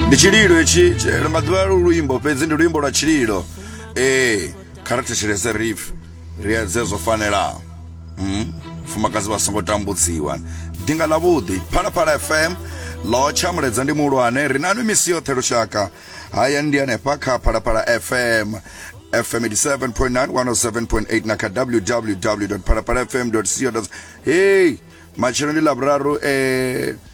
ndi tshililo hetshi tshi- maḓuvha lu luimbo fhedzi ndi luimbo lwa tshililo ee kha ri thetshelese rif ri edze zwo fanelaho Mm. fumakadzi vha songo tambudziwa dinga ḽa vhuḓi phalaphala fm ḽo tsha muledza ndi muhulwane ri nanu misi yoṱhe lushaka haya ndi hanefha kha phalaphala fm fm 87.9 107.8 na kha www phalaphala fm co hei matshelo ndi ḽa vhuraru eh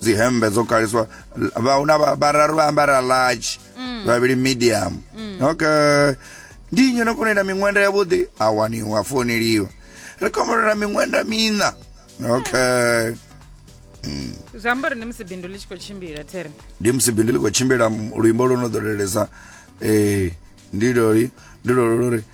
dzi hembe dzo kaliswa vha una vhararu vha ambara large mm. vhavhili medium mm. okay ndi nnyi no kona ita miṅwenda yavhuḓi a waniwa founeliwa ri kombolola miṅwenda miṋa okay mm. zwi amba uri ndi musi bindu ḽi tshi khou tshimbila tere ndi musi bindu ḽi khou tshimbila luimbo lwo no ḓo lelesa um eh, ndi loli ndi lolo lori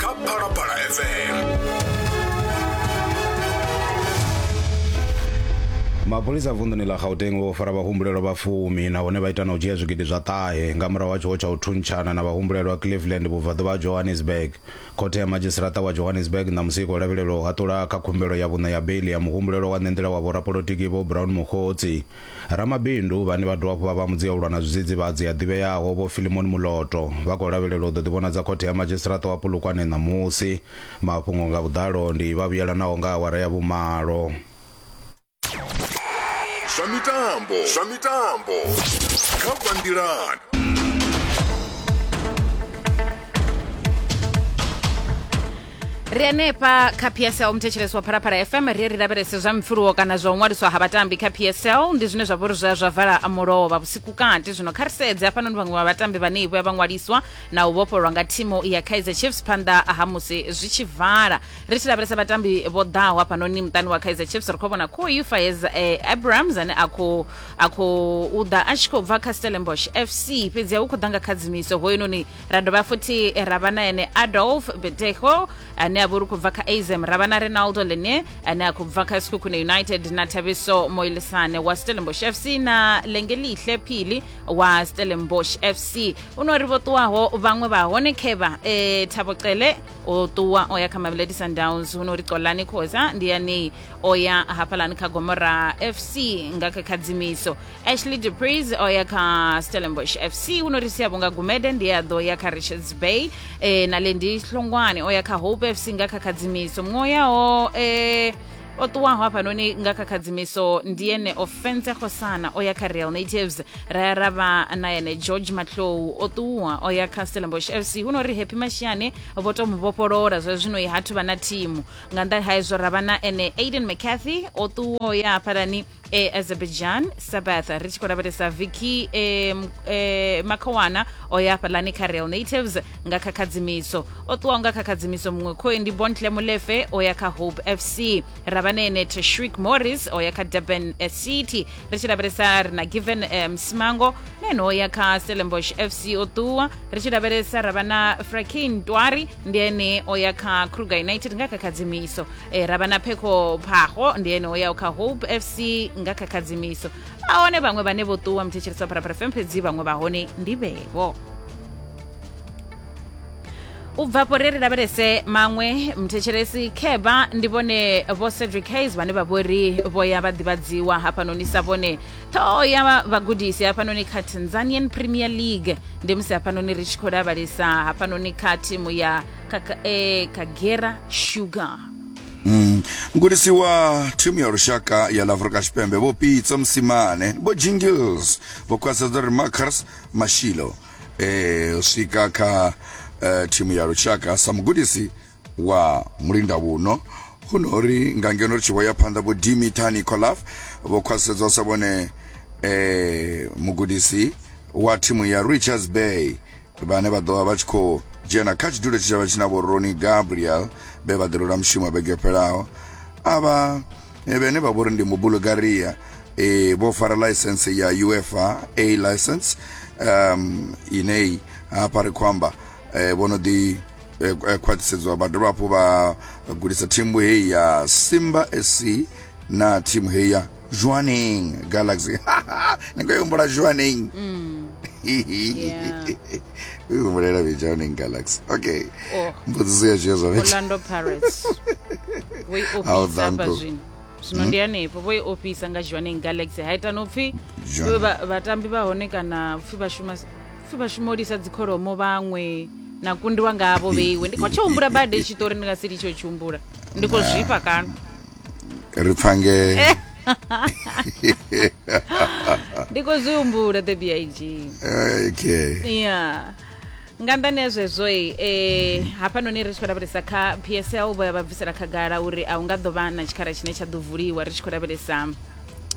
kha phalaphala fm mapholisa vunḓuni ḽa gauteng vho fara vhahumbulelwa vha fumi nahone vha ita na u dzhia zwigidi zwa ṱahe nga murahu ha tshiwo tsha u thuntshana na vhahumbulelwa cleveland vhubvaḓuvha ha johannesburg khothe ya madzhisiṱaraṱa wa johannesburg ṋamusi i khou lavhelelwa u haṱula kha khumbelo ya vhuṋe ya beiḽi ya muhumbulelwa wa ṋenḓela wa vhorapolotiki vho brown mokgotsi Ramabindu vhane vha dovha hafhu vha vha mudzi ya u lwa na zwidzidzivhadzi ya ḓivheaho Vho Philemon Muloto vha khou lavhelelwa u ḓo ḓivhonadza khothe ya madzhisiṱiraṱa wa Polokwane ṋamusi. Mafhungo nga vhuḓalo ndi vha vhuyelanaho nga awara ya vhumalo. Zwa mitambo zwa mitambo kha bva nḓilani. ri hanefha kha psl muthetshelesi wa phalaphala fm ri ri lavhelese zwa mipfuluwo kana zwa u ṅwaliswa ha vhatambi kha psl ndi zwine zwa vhori zwa zwa vala mulovha vhusiku kati zwino kha ri sedze hafhanoni vhaṅwe vha vhatambi vhane vho ya vha ṅwaliswa na u vhofhololwa nga thimu ya kaizer chiefs phanḓa ha musi zwi tshi vala ri tshi lavhelesa vhatambi vho ḓaho hafhanoni muṱani wa kaizer chiefs ri khou vhona kho ufayez eh, abrams ane a khou a khou u ḓa a tshi khou bva kha stellenbosh fc fhedzi hu khou ḓa nga khadzimiso hoyunoni ra dovha futhi ra vha na ene adolf beteho ane a vha uri khou bva kha azm ra vha na renaldo lene ane a khou bva kha sikhukhune united na thabiso moilisane wa stellenbosh fc na lengelihle phili wa stellenbosh fc u no ri vho ṱuwaho vhaṅwe vha hone khevha e, thabo cele o ṱuwa o ya kha mamelodi sundowns hu no ri xolani khoza ndi yanei o ya hafhalani kha gomora fc nga kha khadzimiso ashley depris o ya kha stellenbosch fc u no ri sia vhunga gumede ndi a ḓo ya kha richards bay e, na lendi hlongwane o ya kha hope fc nga kha khadzimiso muṅwe yaho e, o ṱuwaho hafhanoni nga kha khadzimiso ndi ene ofense khosana o ya kha real natives ra ya ra vha na ene george matlou o ṱuwa o ya kha stellenbosch fc hu no ri happy mashiyane vho to mu vhofholora zwa zwino i hathu vha na thimu nga nnḓa ha izwo ra vha na ene aiden mccarthy o ṱuwa o ya hafhalani e azerbaijan sabbath ri tshi khou lavhelesa viki e, m- e, makhowana o ya hafhaḽani kha real natives nga kha khadzimiso o ṱuwaho nga kha khadzimiso muṅwe khoe ndi bontle molefe o ya kha hope fc ravanene teshwik morris o ya kha durban eh, city ri tshi lavhelesa ri na given eh, msimango na ene o ya kha stellenbosh fc o ṱuwa ri tshi lavhelesa ra vha na frakin twari ndi ene o ya kha kruger united nga kha khadzimiso e, ra vha na phekho phaho ndi ene o yaho kha hope fc nga kha khadzimiso a hone vhaṅwe vhane vho ṱuwa muthetshelesa pharapara fm fhedzi vhaṅwe vha hone ndi vhevo u bvapo ri ri lavhelese maṅwe mthetshelesi kheba ndi vhone vho cedric hayes vhane vha vhori vho ya vha ḓivhadziwa hafhanoni sa vhone ṱhoho ya vhagudisi hafhanoni kha tanzanian premier league ndi musi hafhanoni ri tshi khou lavhelesa hafhanoni kha thimu ya Kaka, eh, Kagera Sugar. Mm. mgudisi wa thimu ya lushaka ya la afrika tshipembe vho pitso msimane vho jingles vho khwaṱhisedza uri marcus mashilo eh, u swika kha eh, thimu ya lushaka sa mugudisi wa mulinda vhuno hu no uri nga ngeno ri tshi vho ya phanḓa vho dimita nicolaf vho khwaṱhisedzwa sa vhone eh, mugudisi wa thimu ya richards bay vhane vha ḓovha vha tshi khou dzhena kha tshidulo tshi tshavha tshi na vho roni gabriel vhe vha ḓirula mushumo vhege fhelaho avha eh, vhene vha vhori ndi mubulgaria e vho fara license ya ufa a license um inei hafha ri khou amba eh, vho no ḓi eh, eh, khwaṱhisedzwa vha dovha hafhu vha gudisa thimu heyi ya simba sc na thimu heyi ya Joaning Galaxy. Niko yumbula Joaning. Mm. yeah. Uyumbulela be Joaning Galaxy. Okay. Oh. Mbudziso ya Jesu. Orlando Pirates. We ofisa bazwini. zwino ndi hanefho vho i ofisa nga joaning galaxy ha ita no pfhi vhatambi vha hone kana pfhi vhashuma pfhi vhashumolisa dzikholomo vhaṅwe na kundiwa ngavho vheiwe ndi khou tshihumbula bade tshiṱori ndi nga si litsho tshihumbula ndi khou zwifha kana ri pfange ndi khou zwi humbula the big Eh, okay ya nga nḓani ya zwezwoi eh, hafhanoni ri tshi khou lavhelesa kha psl vho ya vha bvisela khagala uri a hu nga ḓo vha na tshikhala tshine tsha ḓo vuliwa ri tshi khou lavhelesa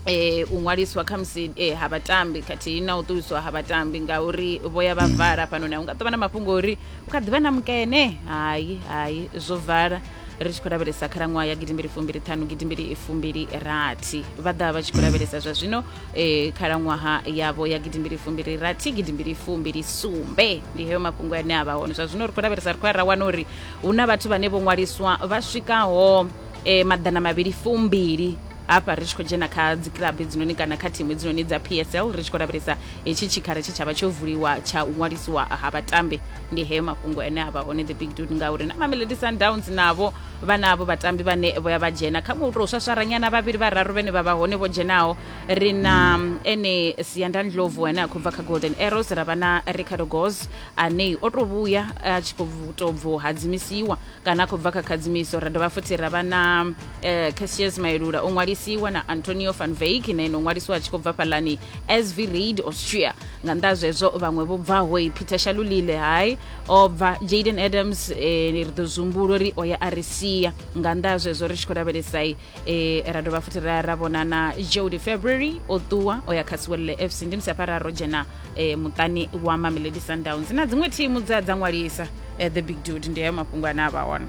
eh, u ṅwaliswa kha musi eh, ha vhatambi khathihi na u ṱuwiswa ha vhatambi ngauri vho ya vha vala hafhanoni a hu nga ḓo vha na mafhungo uri hu kha ḓi vha na mukene hai hai zwo vala ri tshi khou lavhelesa khalaṅwaha ya gidimbili fumbili ṱhanu gidimbili fumbili rathi vha ḓa vha tshi khou lavhelesa zwa zwino eh, khalaṅwaha yavho ya gidimbili fumbili rathi gidimbili fumbili sumbe ndi heyo mafhungo ane a vha hone zwa zwino ri khou lavhelesa ri khou ya ra wana uri hu na vhathu vhane vho ṅwaliswa vha swikaho eh, maḓana mavhili fumbili hafha ri tshi khou dzhena kha dzikilabu hedzinoni kana kha thimu hedzinoni dza psl ri tshi khou lavhelesa hetshi tshikhala tshe tsha vha tsho vuliwa tsha u ṅwalisiwa ha vhatambi ndi heyo mafhungo ane a vha hone the big dude ngauri na mamelodi sundowns navho vha navho vhatambi vhane vho ya vha dzhena kha muṅwe u tou swaswaranyana vhavhili vhararu vhane vha vha hone vho dzhenaho ri na mm, ene siandan lovu ane a khou bva kha golden arrows ra vha na ricardo gos ane o tou vhuya a tshi khou tou bvo hadzimisiwa kana a khou bva kha khadzimiso ra dovha futhi ra vha na um eh, cassius maelula o ṅwalisiwa na antonio van veik na ino ṅwalisiwa a tshi khou bva fhalani sv raid austria nga nnḓa zwezwo vhaṅwe vho bvaho i peter shalulile hai o bva jaden adams eh, ri ḓo zumbulo ri o ya a ri sia nga nnḓa zwezwo ri tshi khou lavhelesai e ra dovha futhi ra ra vhona na jody february o ṱuwa o ya kha siwelele fc ndi musi hafha ra ro dzhena e, muṱani wa mamelodi sundowns na dziṅwe thimu dza dza ṅwalisa e, the big dude ndi hayo mafhungo ane a vha hone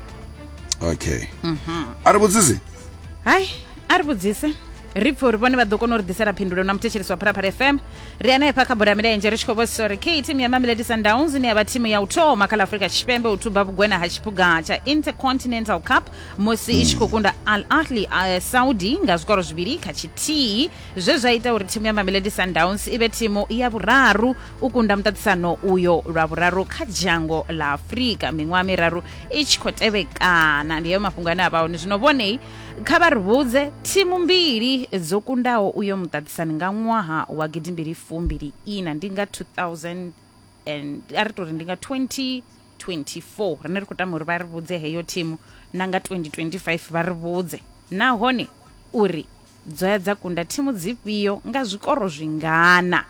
okay a ri vhudzisi hai a ri vhudzise ri pfhe uri vhone vha ḓo kona u ri ḓisela phindulo na muthetshelisi wa phalaphala fm ri hanefha kha bola ya milenzhe ri tshi khou vhosisa uri khe thimu ya mamelodi sundowns ine ya vha thimu ya u thoma kha ḽa afrika tshipembe u thuba vhugwena ha tshiphuga tsha intercontinental cup musi i tshi khou kunda al ahli a saudi nga zwikoro zwivhili kha tshithihi zwe zwa ita uri thimu ya mamelodi sundowns i vhe thimu ya vhuraru u kunda muṱaṱisano uyo lwa vhuraru kha dzhango ḽa afurika miṅwaha miraru i tshi khou tevhekana ndi heyo mafhungo ane a vha hone zwino vhonei kha vha ri vhudze thimu mbili dzo kundaho uyo muṱaṱisani nga ṅwaha wa gidimbili fumbili ina ndi nga 2000 and a ri tori ndi nga 20 2024 rine ri khou tama uri vha ri vhudze heyo thimu na nga 2025 vha ri vhudze nahone uri dzo ya dza kunda thimu dzifhio nga zwikoro zwingana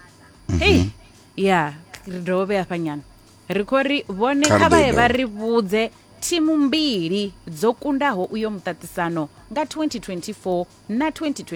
mhm. hei ya ri dovhe hafha nyana ri khou ri vhone kha vha ye vha ri vhudze thimu mbili dzo kundaho uyo muṱaṱisano nga 2024 na 2020